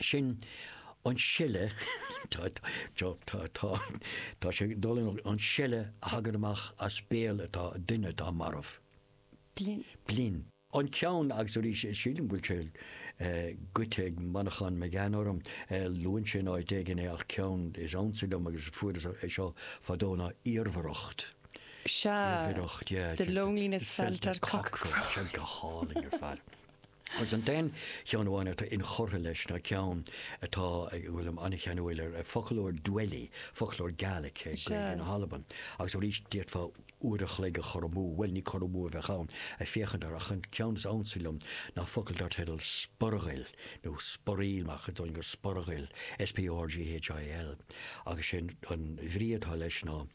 Sin an seile tá sé ag dul an seile a thagann amach as béal atá duine atá marbh. Blinn. An ceann agus arís sílim go bhfuil sé goidte ag Manchán Magan orm, luann sé in áit éigin é ach ceann is ansa liom agus fuaireas é seo fadó ná iarmhaireacht. Sea, the loneliness felt at Cockcrow. Go hálainn ar fad. Agus an t-aon cheann amháin atá inchurtha leis ná ceann atá ag, bhfuilim an-cheanúil air, Foclóir Dwelly, foclóir Gaelic, Gaeilge na hAlban. Agus arís, d'fhéadfá uair an chloig a chur amú, bhuel, ní cur amú a bheadh ann, ag féachaint air, ach an ceann is ansa liom ná focal dar teideal sporghail, nó sporaíl, ach a dtagann go sporghail, S-P-O-R-G-H-I-L. Agus sé an bhrí atá leis ná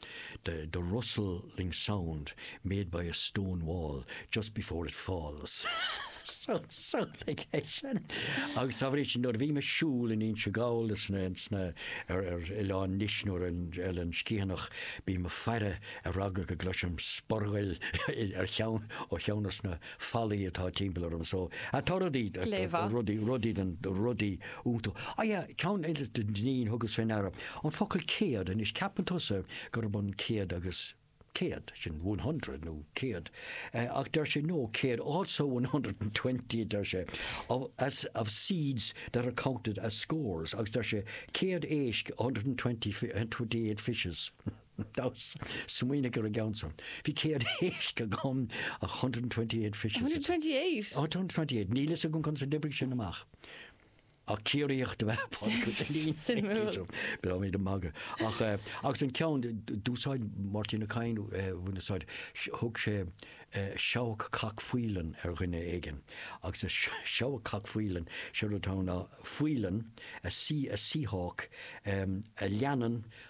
the the rustling sound made by a stone wall just before it falls. Sólfaidh é sin. Agus dá bhrí sin nuair a bhím ag siúl in Inse Gall sna sna ar ar oileán Nis nó ar an Oileán Sciathanach bím ag faire ar eagla go gcloisim sporghail ar cheann ó cheann de na fallaí atá timpeall orm so atá rudaí Glémhaith. rudaí rudaí den rudaí iontacha yeah ceann eile den Duinnín thugas fé ndeara an focal céad anois ceapann tusa gurb ionann céad agus céad sin one hundred nó céad eh ach deir sé no céad also one hundred and twenty a deir sé of as of seeds that are counted as scores agus deir sé céad éisc a hundred and twenty fi- and twenty eight fishes Nós, Smaoinigh ar an gceann seo. Bhí 100 éisc agam, 128 fishes. 128? 128. Níl a fhios agam conas a d'oibrigh sin amach. Ach Ciarraíoch dob ea Pádraig Ó Duinnín. Suimiúil. Beidh mé do magadh. Ach eh, agus an ceann d- d- d'úsáid Máirtín Ó Cadhain eh, bhain úsáid s- thug sé eh, seabhac cac faoileann ar dhuine éigin agus a s- seabhac cac faoileann sé rud ann ná faoileann a sea a sea hawk em, a leanann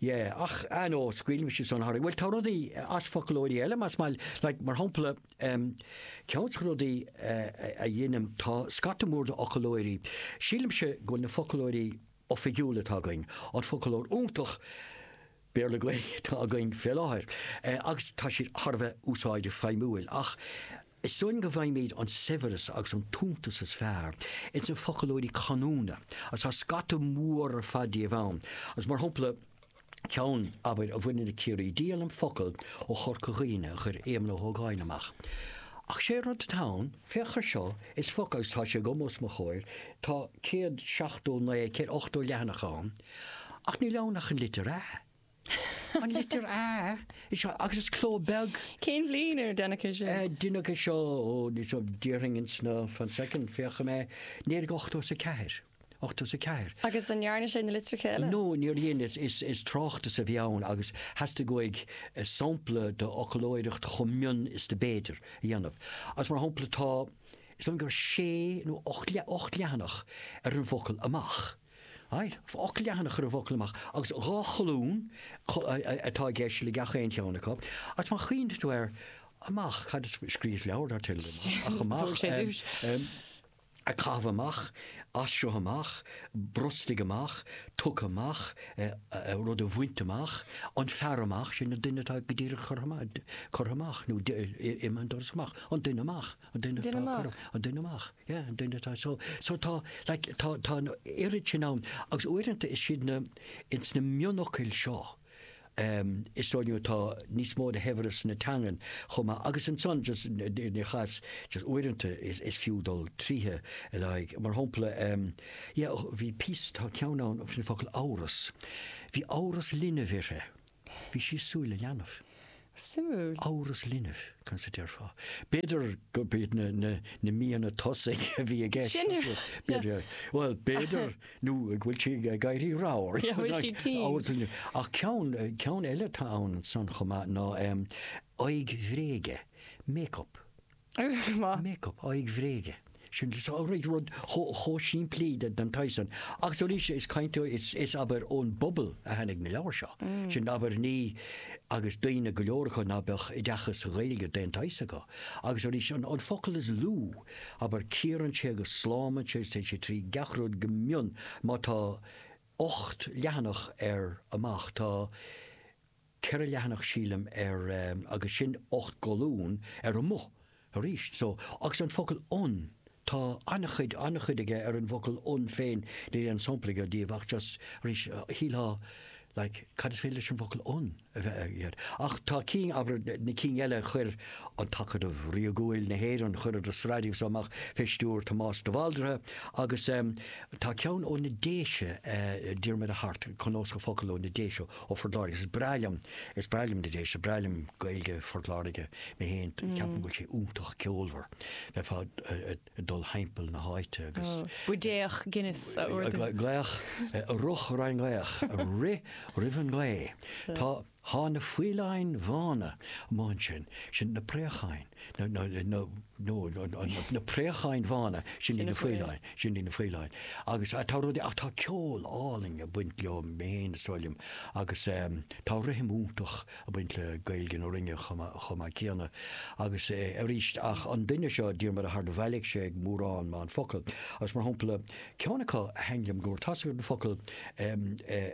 Yeah, ach I know scaoilimse san tharam bhuel tá rudaí as foclóirí eile más maith leat mar shampla um, ceann de rudaí uh, a dheinim tá scata mór de fhoclóirí sílimse go bhfuil na foclóirí oifigiúla atá againn an foclóir iontach Béarla Gaeilge atá againn fé láthair uh, agus tá siad thar a bheith úsáideach feidhmiúil ach Is dóigh liom go bhfaighimid an saibhreas agus an t-iontas is fearr ins na foclóirí canúna, agus tá scata mór ar fad díobh ann, agus mar shampla, ceann, abair, a bhaineann le Ciarraí, díolaim focal ó Chorca Dhuibhne a chuir Éamonn Ó hÓgáin amach. Ach sé rud atá ann, féach air seo, is focal, agus tá sé agam os mo chomhair, tá céad seachtó naoi, céad ochtó leathanach ann, ach níl ann ach an litir 'a'. An litir A is seo agus is cló beag. Cén bhliain ar deineadh é seo? Deineadh é seo ó ní só déarfainn ins na fan soicind féachfaidh mé. Naoi déag 80 is 4. 80 is 4. Agus an ndearna sé na litreacha eile? No, níor dhein is is is tráchtas a bhí ann agus theastaigh uaidh sampla de fhoclóireacht chomh mion is do b'fhéidir a dhéanamh. Agus mar shampla tá is dóigh gur sé nó ocht leathanach ar an bhfocal amach. Aye, ocht leathanach ar an bhfocal amach agus dhá cholún atá i gceist le gach aon cheann acu. Agus má chuimhníonn tú ar amach, cad is scríos leabhar atá tinn liom ach amach, a caitheamh amach, as seo amach, brostaigh amach, tugtha amach, rud a bhaint amach, an fear amach, sin an duine atá go díreach curtha amach nó imithe an doras amach, an duine amach, an duine atá curtha, an duine amach. Yeah an duine atá so so tá like tá tá an oiread sin ann agus uaireanta is siad na ins na mionfhocail seo ehm is dóigh liom atá níos mó de shaibhreas na teangan chomh maith agus ansan just ní chas just uaireanta is is fiú dul tríothe ar aghaidh mar shompla ehm yeah bhí píosa tá ceann ann faoin focal amhras bhí amhras linbh uirthi bhí sí ag súil le leanbh. Suimiúil. Amhras linbh, conas a déarfá? B'fhéidir gurb iad na, na, na míonna tosaigh a bhí i gceist. Sin a rud, B'fhéidir, bhuel, b'fhéidir, nó go bhfuil sí ag éirí ramhar. Yeah, bhfuil sí tinn. Amhras linbh. Ach ceann, ceann eile atá ansan chomh maith ná, em, aghaidh bhréige, make-up. Make up, aghaidh bhréige. Sin rud chomh simplí den tsaghas san. Agus arís is caint is abair ón bpobal a tháinig na leabhair seo. Sin abair ní, agus daoine go leor acu ná beadh oideachas sa Ghaeilge d'aon tsaghas acu. Agus arís an focal is lú, abair cíorann sé agus slámann sé agus téann sé trí gach rud go mion má tá ocht leathanach ar amach tá, ceithre leathanach sílim ar agus sin ocht gcolún ar amuigh arís. So agus an focal 'an' tá an-chuid, an-chuid aige ar an bhfocal 'an' féin, níl aon sampla aige díobh ach just arís shílfeá like cad is féidir leis an bhfocal 'an' a bheith aige air? Ach tá cinn, abair na cinn eile chuir An tAcadamh Ríogúil na hÉireann, chuireadar sraith díobh so amach fé stiúr Tomás de Bhaldraithe agus tá ceann ó na Déise, Diarmaid Ó hAirt, Cnuasach Focal ó na Déise, Ó Phort Láirge, Is breá liom, is breá liom na Déise, breá liom Gaeilge Phort Láirge mé féin, ceapaim go bhfuil sé iontach ceolmhar, le fada ag dul thimpeall na háite agus. buidéach Guinness a ordú. Glaoch, a rith roimh an nglaoch, ag rith roimh an ngaoth. Tá, thá na faoileáin bhána amuigh ansin, sin na préacháin. na préacháin bhána, sin í na faoileáin, sin í na faoileáin. Agus tá rud ach tá ceol álainn ag baint leo féin is dóigh liom agus tá rithim iontach ag baint le Gaeilge na Rinne chomh maith céanna. Agus arís ach an duine seo Diarmaid Ó hAirt bhailigh sé mórán mórán focal. Agus mar shampla ceann acu a thaithin liom go mór tá focal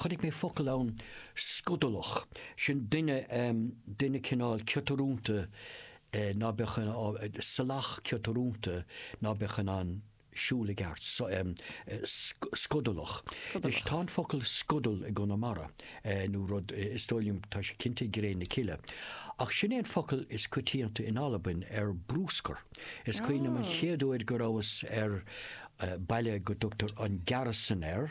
chonaic mé focal ann scodalach, sin duine, duine cineál ciotarúnta ná beadh in ann, salach ciotarúnta ná beadh in ann siúl i gceart, scodalach. Anois tá an focal scodal i gConamara nó rud, is dóigh liom, tá sé cinnte i gCré na Cille. Ach sin é an focal is coitianta in Albain ar bruscar. Is cuimhin liom an chéad uair go rabhas ar baile go dtugtar an Gearastan air,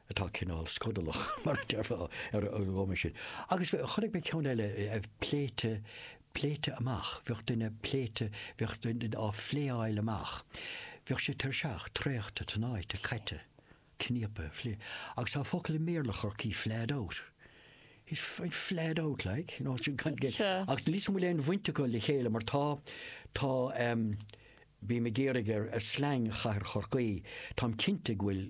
atá cineál scodalach, mar a deirfeá ar an gcuma sin. Agus chonaic mé ceann eile a bheith pléite, pléite amach, bheadh duine pléite, bheadh duine á phléáil amach. Bheadh sé tuirseach, traochta, tnáite, caite, cníopa, phlé. Agus tá focal i mBéarla Chorcaí, flahed out. He's he's flahed out, like, you know, sin gan gé. Sea. Ach níl a fhios agam an bhfuil aon bhaint acu le chéile mar tá, tá, em, bím ag iarraidh ar, ar slang chathair Chorcaí, táim cinnte go bhfuil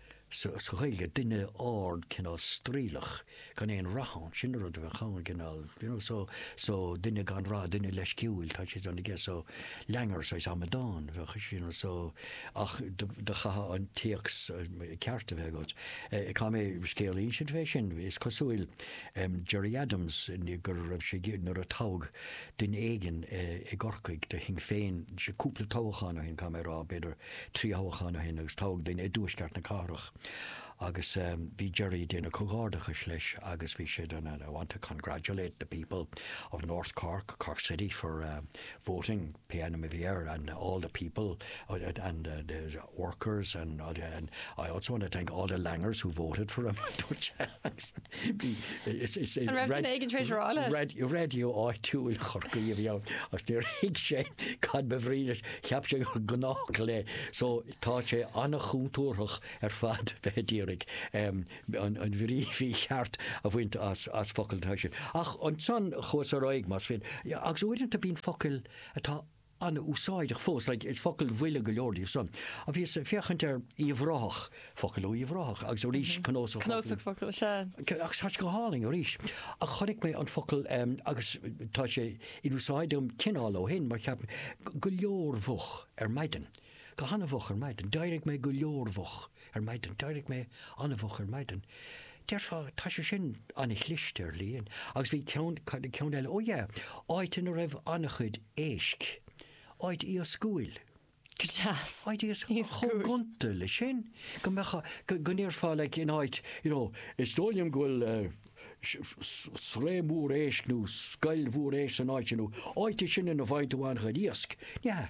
sa Ghaeilge, duine ard, cineál straoilleach, gan aon rath ann, sin an rud a bheadh ann, cineál, you know, so, so, duine gan rath, duine leisciúil, tá siad ann, I guess, so, langer, saghas amadán, a bheadh, you know, so, ach do, do chaithfeá an téacs ceart a bheith agat. Eh, caithfidh mé scéal a insint fé sin, is cosúil, em, Gerry Adams, ní, go raibh sé, nuair a toghadh duine éigin, eh, i gCorcaigh do Shinn Féin, sé, cúpla toghchán ó shin, caithfidh mé a rá, b'fhéidir, trí thoghchán ó shin agus toghadh duine i dtuaisceart na cathrach agus bhí Gerry ag déanamh comhghairdeachais leis agus bhí sé den I want to congratulate the people of North Cork, Cork City for voting pé ainm a bhí air and all the people and the workers and I also want to thank all the Langers who voted for him, a dúirt sé. raidió áitiúil chorcaí a bhí ann is níor thuig sé cad ba bhrí leis cheap sé gnách le so tá sé ana-chúntúrthach ar fad bheith d'iarraidh an bhrí mhícheart a bhaint as as focail tá sin ach ansan chuas ar aghaidh más féidir agus uaireanta bíonn focail atá an-úsáideach fós, like, is focail bhuile go leor díobh san. Ach bhíos ag féachaint ar Uíbh Ráthach, focal ó Uíbh Ráthach, agus arís cnósach focal. Cnósach focal, sea. Ach tá sé go hálainn arís. Ach chonaic mé an focal, agus tá sé in úsáid agam cineál ó shin, mar cheap mé, go leor mhoch ar maidin. go han-mhoch ar maidin. D'éirigh mé go leor-mhoch ar maidin. D'éirigh mé an-mhoch ar maidin. Déarfá, tá sé sin an-chliste, ar a laghad. Agus bhí ceann, cad é ceann eile? Ó yeah, áit ina raibh an-chuid éisc. Áit iascúil. Go deas. Áit iascúil. Chomh gonta leis sin, go mbeadh, go ndéarfá like in áit, you know, is dóigh liom go bhfuil sraith mhór éisc nó scoil mhór éisc san áit sin, nó áit é sin ina bhfaigheann tú an-chuid iasc. Yeah,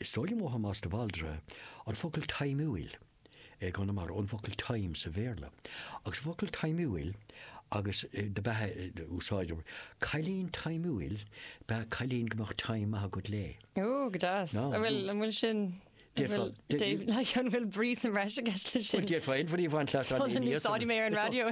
Is dóigh liom ó Thomás de Bhaldraithe an focal taimiúil i gConamara, an focal time sa Bhéarla. Agus an focal taimiúil agus do b'ea an úsáid, cailín taimiúil ba ea cailín go mbeadh time maith agat léi. Ooh, go deas. An bhfuil, an bhfuil san, an bhfuil, like, an bhfuil brí sa mbreis i gceist le sin? Déarfainn brí a bhaint leat an líon níos. D'úsáid mé ar an radio.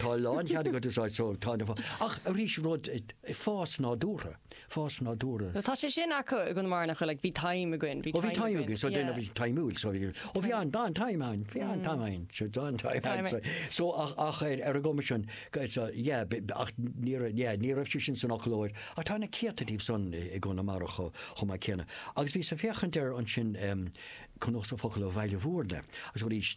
Tá lán chead agat é a úsáid so tá na fá. Ach arís rud i fás nádúrtha. fás nádúrtha. Tá sé sin acu i gConamara nach bhfuil like bhí taim againn bhí taim againn. Ó bhí taim againn so yeah. bhí taim úil so ó bhí an dán taim ann bhí an taim ann so dán taim ann so so ach ach ar ar an gcuma sin so yeah bhí ach ní raibh yeah ní raibh sé sin san fhoclóir ach tá na céadta díobh san i i gConamara cho chomh maith céanna. Agus bhí ag féachaint air ansin cnuasach focal ó Bhaile Bhuirne agus arís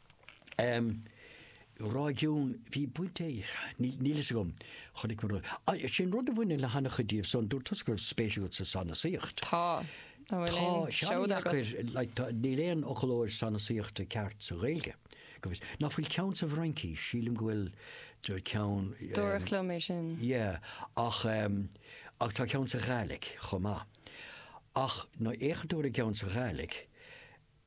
Réigiún, bhí baint aige, níl níl fhios agam, chonaic mé rud, ah, sin rud a bhaineann le hana-chuid díobh san, dúirt tusa go raibh spéis agat sa sanasaíocht. Tá, an bhfuil Tá, aon seans seoda agat? deacair, like, tá, níl aon fhoclóir sanasaíochta ceart sa Ghaeilge, go bhfios. Nach bhfuil ceann sa bhFraincis, sílim go bhfuil do- ceann, Dúradh eh, liom é sin. yeah, ach, em, ach tá ceann sa Ghàidhlig chomh maith. Ach, má fhéachann tú ar an gceann sa Ghàidhlig,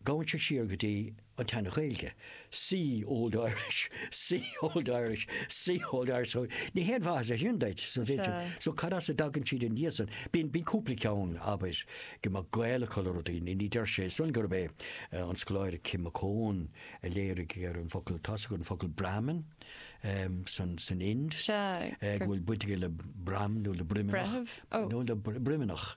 Gabhann sé siar go dtí an tSean-Ghaeilge, see Old Irish, see Old Irish, see Old Irish, so ní haon mhaitheas é sin duit, so bhí sin, so cad as a dtagann siad ina dhiaidh san? Bíonn, bíonn cúpla ceann, abair, go mbeadh gaol acu le rudaí, ní, ní dóigh liom gurb é an scoláire Kim McCone a léirigh ar an bhfocal atá sa, an focal Brahmin san, san Ind, go bhfuil baint aige le broim nó le broimneach, nó le broimneach.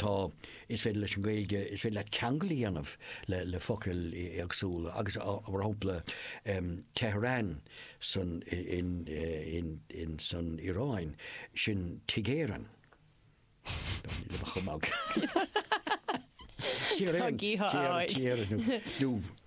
Tá, is féidir leis an nGaeilge, is féidir leat ceangal a dhéanamh le focail éagsúla agus, mar shampla, Tehran san Iaráin, sin Tigh Éireann. Ní raibh tuairim agam. Tír Éireann, Tír Éireann, nó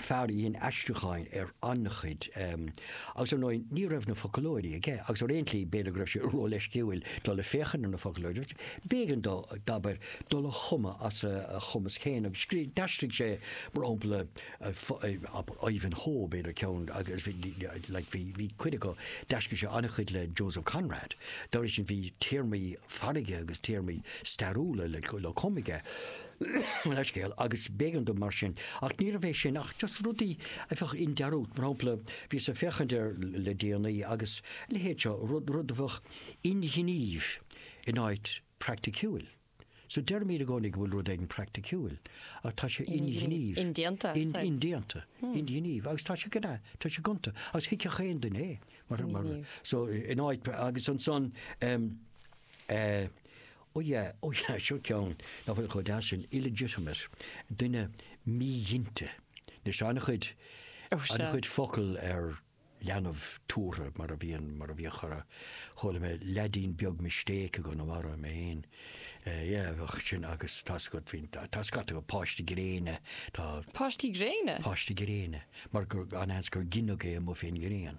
fear a dhein aistriúcháin ar an-chuid, agus ar ndóigh ní raibh na foclóirí aige agus ar aon tslí b'fhéidir go raibh sé ró-leisciúil dul ag féachaint ar na foclóirí agus b'éigean dó, abair, dul ag cumadh as a chumas féin agus scríobh, d'aistrigh sé mar shampla Ivanhoe, b'fhéidir ceann agus bhí, like, bhí, bhí cuid acu, d'aistrigh sé an-chuid le Joseph Conrad, dá bhrí sin bhí téarmaí farraige agus téarmaí stairiúla le, le cumadh aige. leithscéal, agus b'éigean dó mar sin. Ach níorbh é sin ach just rudaí a bheadh i ndearúd. Mar shampla, bhíos ag féachaint ar le déanaí agus a leithéid seo, rud, rud a bheadh inghnímh in áit praiticiúil. So deirimid i gcónaí go bhfuil rud éigin praiticiúil, ach tá sé inghnímh. Indéanta, in, says. indéanta, hmm. inghnímh, agus tá sé gna, tá sé gonta, agus thuigfeadh aon duine é. Mar, mar, so in áit agus ansan um, uh, eh, Oh yeah, oh yeah, seo ceann nach bhfuil chomh deas sin, illegitimate, duine míghinte. Anois tá an-chuid, Oh sure. an-chuid focal ar leanbh tabhartha mar a bhíonn, mar a bhíodh chorr, chuala mé leaidín beag mistake i gConamara, mé fhéin, eh, yeah, bheadh sin agus tá scut, bhíonn, tá scata acu, páiste gréine, tá, Páistí gréine? páiste gréine, mar gur, an seans gur gineadh é amuigh fén ngrian.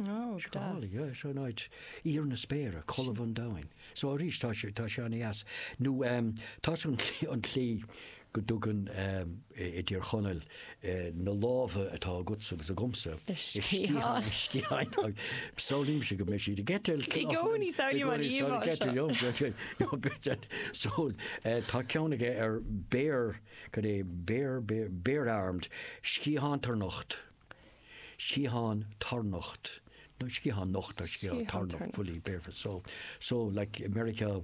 Is go hálainn, yeah, so now it's íor na spéire, colbha an domhain. So arís tá sé, tá sé an-dheas. Nó ehm, tá an tslí, an tslí go dtugann ehm, i dTír Chonaill, eh, na lámha atá agatsa agus agamsa, i sciatháin, i sciatháin, tá, samhlaímse go mbeidh siad ag eitilt. I gcónaí samhlaím an íomhá seo. I gcónaí samhlaím an íomhá seo, go mbeidh siad, so, eh, tá ceann aige ar bare, cad é, bare, bare, bare-armed, sciathán tarnocht. sciathán tarnocht, nó sciathán nocht nó sciathán tarnocht, fully barefoot, so, so like i Meiriceá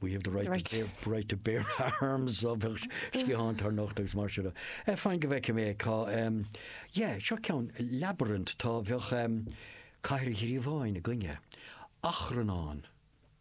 we have the right, right. To, bear, right to bear arms, so bheadh sciathán tarnocht agus mar sin. Eh, fan go bhfeicfidh mé cá, um, yeah, seo ceann labyrinth, tá bheadh um, cathair ghríobháin againne, achrannán.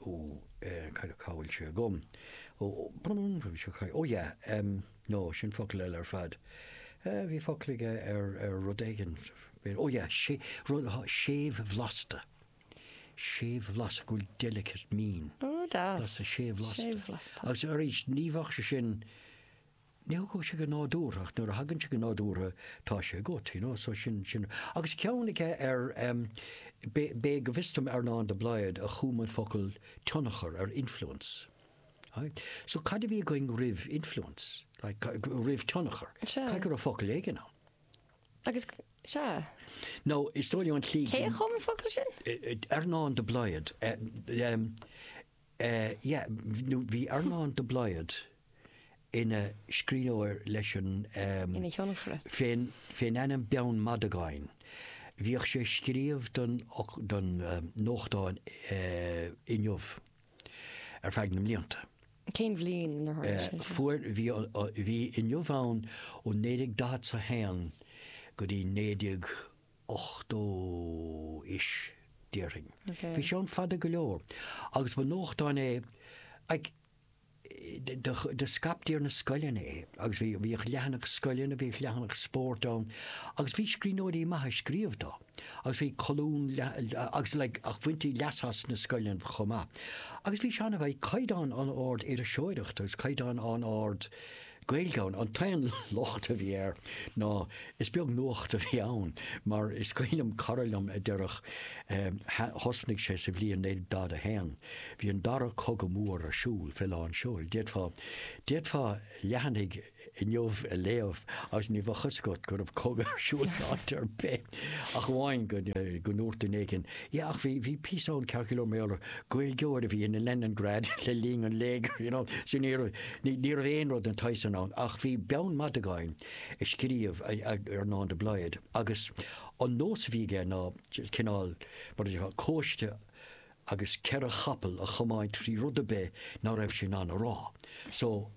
Ó, eh, caidé cá bhfuil sé agam? Ó, brum, bhí sé caidé, ó yeah, em, no, sin focal eile ar fad. Eh, bhí focal aige ar, ar rud éigin, b'fhéidir, ó yeah, sea, rud, ha, séimhbhlasta, séimhbhlasta, go bhfuil delicate, mín, Ó, deas. blasta, séimhbhlasta. Séimhbhlasta. Agus arís, ní bheadh sé sin Ní thagann sé go nádúrtha ach nuair a thagann sé go nádúrtha tá sé agat, you know, so sin, sin. Agus ceann aige ar em, b'é, b'é go bhfios dom Earnán de Blaghd a chum an focal tionchar ar influence. Right? So cad a bhí againn roimh influence? Like, ca, ca, roimh tionchar? Sea. Caithfidh go raibh focal éigin ann. Agus, sea. Now, is dóigh liom an tslí. Cé a chum an focal sin? Earnán de Blaghd. Em, yeah nó bhí Earnán de Blaghd ina scríbhneoir leis an ehm ina thionchaire. fén fén ainm Beann Mhadagáin bhíodh sé ag scríobh don don nuachtán eh Inniu ar feadh na mblianta. Cén bhliain inar tharla sé sin? Fuair bhí bhí Inniu ann ó 1941 go dtí 19 80 ish, déarfainn. Bhí sé ann fada go leor. Agus ba nuachtán é, like, do scaiptí ar na scoileanna é, agus bhíodh leathanach scoileanna, bhíodh leathanach spóirt ann, agus bhí scríbhneoirí maithe ag scríobh dó, agus bhí colún, agus like, ach bhaintí leas as sna scoileanna chomh maith. Agus bhí sé an-, bhí caighdeán an-ard iriseoireachta, agus caighdeán an-ard, Gaeilge ann. An t-aon locht a bhí air ná is beag nuacht a bhí ann mar is cuimhin liom cara liom a deirfeadh thosnaigh sé sa bhliain 1941, bhí an dara cogadh mór ar siúl fé lán seoil. D'fhéadfá, d'fhéadfá leathanaigh Inniu a léamh agus ní bheadh fhios agat go raibh cogadh ar siúl in áit ar bith. Ach amháin go ndúirt duine éigin, yeah, ach bhí, bhí píosa ann ceann Cill Ó Méalair, Gaeilgeoir a bhí in Leningrad le linn an léigir, you know, so ní raibh, ní raibh aon rud den tsaghas sin ann. Ach bhí Beann Madagáin ag scríobh Earnán de Blaghd agus an nós a bhí aige ná cineál, mar a déarfá, cóiste agus ceithre chapall a chomáint trí rud ar bith ná raibh sé in ann a rá. So.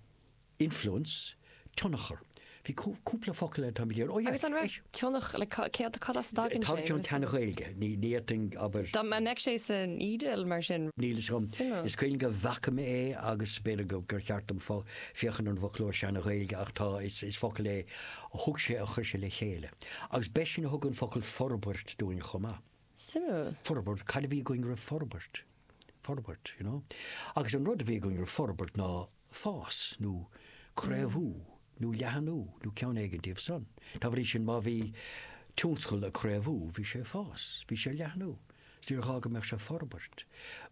Influence, tionchar. Bhí cúpla focal eile, táimid ar, oh yeah. Agus an raibh tionchar, like céard, cad as a dtagann sé? Tá tionchar ón tSeana-Ghaeilge, ní fhéadfainn, abair. Dá mbeadh sé san eDIL mar sin? Níl fhios agam. Is cuimhin go bhfaca mé é agus b'fhéidir gur cheart dom féachaint ar an bhfoclóir Seana-Ghaeilge ach tá, is focal é a thug sé, a chuir sé le chéile. Agus b'eisean a thug an focal forbairt dúinn chomh maith. Suimiúil. Forbairt, cad a bhí againn roimh forbairt? Forbairt, you know. Agus an rud a bhí againn roimh forbairt ná fás nó craobhú nó leathnú nó ceann éigin díobh san. Dá bhrí sin má bhí tionscal ag craobhú bhí sé ag fás, bhí sé ag leathnú, 's níor ghá go mbeadh sé ag forbairt.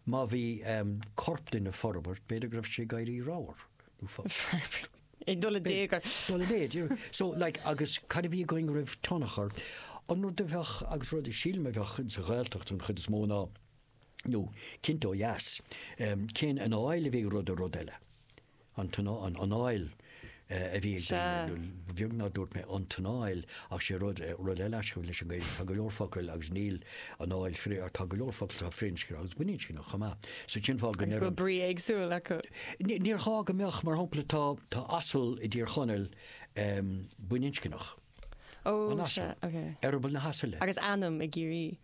Má bhí ehm, corp duine ag forbairt b'fhéidir go raibh sé ag éirí ramhar nó forbairt. Ag dul i dtéagar. Ag dul i dtéagar, you know. So like agus cad a bhí againn roimh tionchar, an rud a bheadh agus rud a sílim a bheadh sa Ghaeltacht an chuid is mó ná, nó cinnte ó dheas, cén anáil a bhí ag rud ar rud eile? An t-anál, an anáil a bhí ag daoine, nó beag nár dúirt mé an t-anál, ach sé rud, rud eile aisteach leis an Ghaeilge. Tá go leor focail agus níl anáil fri, tá go leor focal atá firinscneach agus baininscneach chomh maith. So cén fáth go Agus go bhfuil brí éagsúil acu. Ní, níor ghá go mbeadh, mar shampla tá, tá asal i dTír Chonaill baininscneach. Ó, An sea, asal, ok. eireaball na hasaile. Agus ainm i gCiarraí.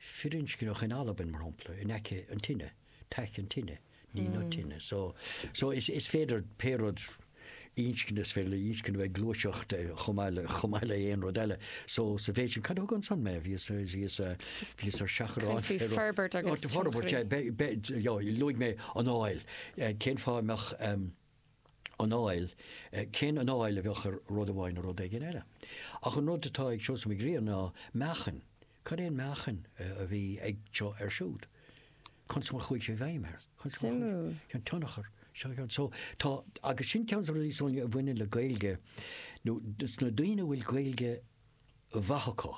firinscneach in Albain mar shampla in aice an tine, taice an tine, ní na tine. So so is is féidir pé rud inscne is féidir le inscne bheith gluaiseacht chomh maith le chomh maith le aon rud eile. So sa mhéid sin cad a thug ansan mé? Bhíos ar bhíos ar bhíos ar seachrán Faoi féro- forbairt agus Fo- forbairt tionscnaimh. eh, be- be- j- jo, luaigh mé anáil eh, cén fáth a mbeadh em, anáil, cén anáil a bheadh ar rud amháin nó rud éigin eile. Ach an rud atá ag Seosamh Mac Grianna ná meáchain. Cad é an meáchain a bhí ag seo air siúd? Conas mar a chuaigh sé i bhfeidhm air? Suimiúil. An tionchar. So tá, agus sin ceann de na rudaí is dóigh liom a bhaineann le Gaeilge nó sna daoine a bhfuil Gaeilge mhaith acu.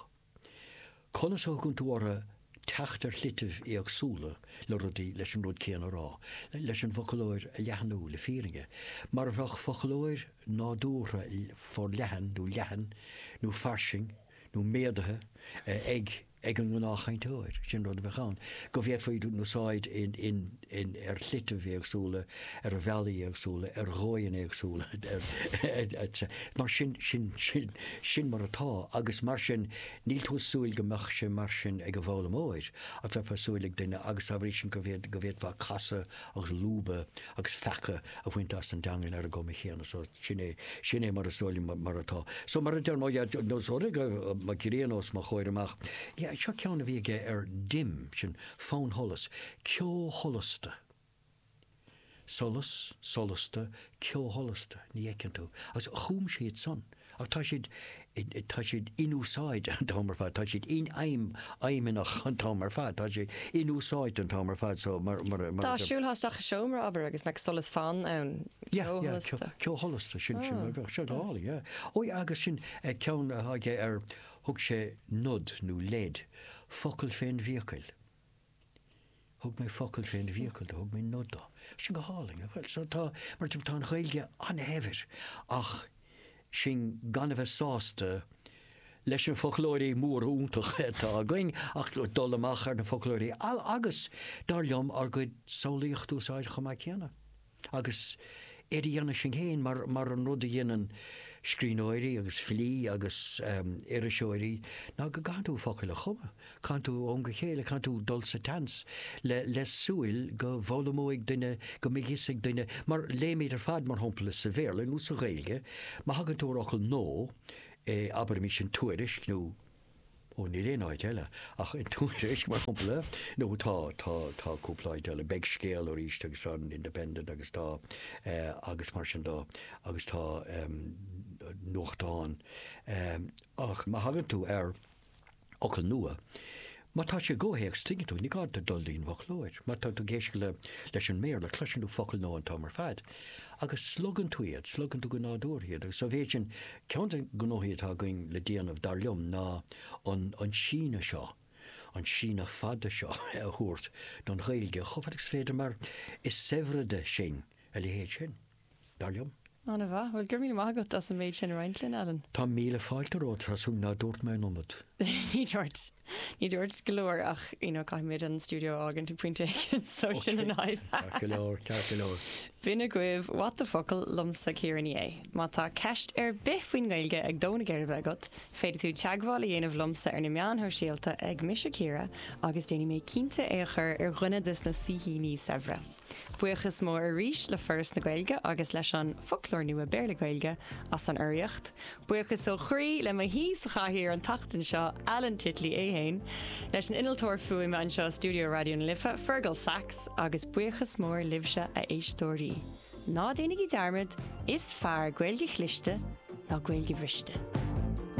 Conas a thugann tú ortha teacht ar shlitibh éagsúla le rudaí leis an rud céanna a rá, leis an bhfoclóir a leathnú le fírinne, mar a bheadh foclóir nádúrtha forleathan nó leathan nó fairsing nó méadaithe ag an ngnáthchainteoir, sin rud a bheadh ann go bhféadfaidís a úsáid in. in, ar shlitibh éagsúla, ar bhealaí éagsúla, ar dhóigheanna éagsúla, etc. Mar sin, sin, sin, sin mar atá agus mar sin níl tú ag súil go mbeadh sé mar sin ag an bhfoghlaimeoir ach bheifeá ag súil ag duine agus dá bhrí sin go bhféad, go bhféadfá casadh agus lúbadh agus feacadh a bhaint as an dteangain ar an gcuma chéanna so sin é, sin é mar is dóigh liom mar atá. So mar a deirim, no, so rinne muc ghriain os mo chomhair amach, yeah, seo ceann a bhí aige ar dim, sin, Fannsholas, ceosholasta. Solas, solasta, ceosholasta, ní fheiceann tú. Agus chum siad san. Ach tá siad, tá siad inúsáidte an t-am ar fad, tá siad infheidhm, fheidhmeannach an t-am ar fad, tá siad inúsáidte an t-am ar fad so mar, mar a, mar a. Dá siúlthá isteach i seomra, abair, agus go mbeadh solas fann ann, Yeah, ceo yeah, sholasta. ceosholasta, sin, sin, bheadh sé go hálainn, yeah. Ó yeah, agus sin ceann atá aige ar, Thug sé nod nó leid, focal fén bhfiacail. Thug mé focal fén bhfiacail do, thug mé nod do. Sin go hálainn, nach bhfuil? So tá, mar tá an Ghaeilge an-shaibhir ach sinn gan a bheith sásta leis na foclóirí móra iontacha atá againn ach dul amach ar na foclóirí agus, dar liom, ár gcuid samhlaíochta a úsáid chomh maith céanna. Agus é a dhéanamh sinn féin, mar an rud a dhéanann scríbhneoirí agus filí agus iriseoirí, ná go gcaitheann tú focail a chumadh. Caitheann tú ó am go chéile, caitheann tú dul sa tseans le súil go bhfoghlaimeoidh duine, go mbeidh a fhios ag duine, mar léimid ar fad, mar shampla, sa Bhéarla nó sa Ghaeilge, má thagann tú ar fhocal nua, abraimis i dtuairisc nó. Ó níl aon áit eile ach i dTuairisc mar shompla. Nó tá, tá, tá cúpla áit eile. Beidh Scéal, Nós agus tá an Independent agus tá eh agus mar sin do agus tá em nuachtáin em ach má thagann tú ar fhocail nua, má tá sé i gcomhthéacs tuigeann tú, ní gá duit dul dtí'n bhfoclóir. Má tá tú ag éisteacht le, leis an mBéarla cloiseann tú focail nua an t-am ar fad. Agus slogann tú iad, slogann tú go nádúrtha iad agus sa mhéid sin, ceann de na gnóthaí atá againn le déanamh, dar liom, ná an síneadh seo, an síneadh fada so a thabhairt don Ghaeilge chomh fada agus is féidir mar is saibhre de sinn a leithéid sin, dar liom. An-mhaith. Bhuel, go raibh míle maith agat as an méid sin a roinnt linn, Alan. Tá míle fáilte romhat, Treasa, nach dúirt mé an iomad? Ní dúirt. Ní dúirt go leor ach you know caithfimid an stiúideo a fhágaint ag pointe éigin so sin an fhadhb. Ceart go leor, ceart go leor. B'in agaibh What the Focal liomsa Ciara Ní É. Má tá ceist ar bith faoin nGaeilge ag dó na geirbe agat, féadfaidh tú teagmháil a dhéanamh liomsa ar na meáin shóisialta ag Mise Ciara agus déanfaidh mé cinnte é a chur ar dhuine des na saoithíní saibhre. Buíochas mór arís le Foras na Gaeilge agus leis an Foclóir Nua Béarla-Gaeilge as an urraíocht. Buíochas ó chroí le m'aoi sa chathaoir an tseachtain seo, Alan Titley féin, leis an innealtóir fuaime anseo i stiúideo Raidió na Life, Fergal Sachs, agus buíochas mór libhse a éisteoirí. Ná déanaigí dearmad, is fearr Gaeilge chliste ná Gaeilge bhriste.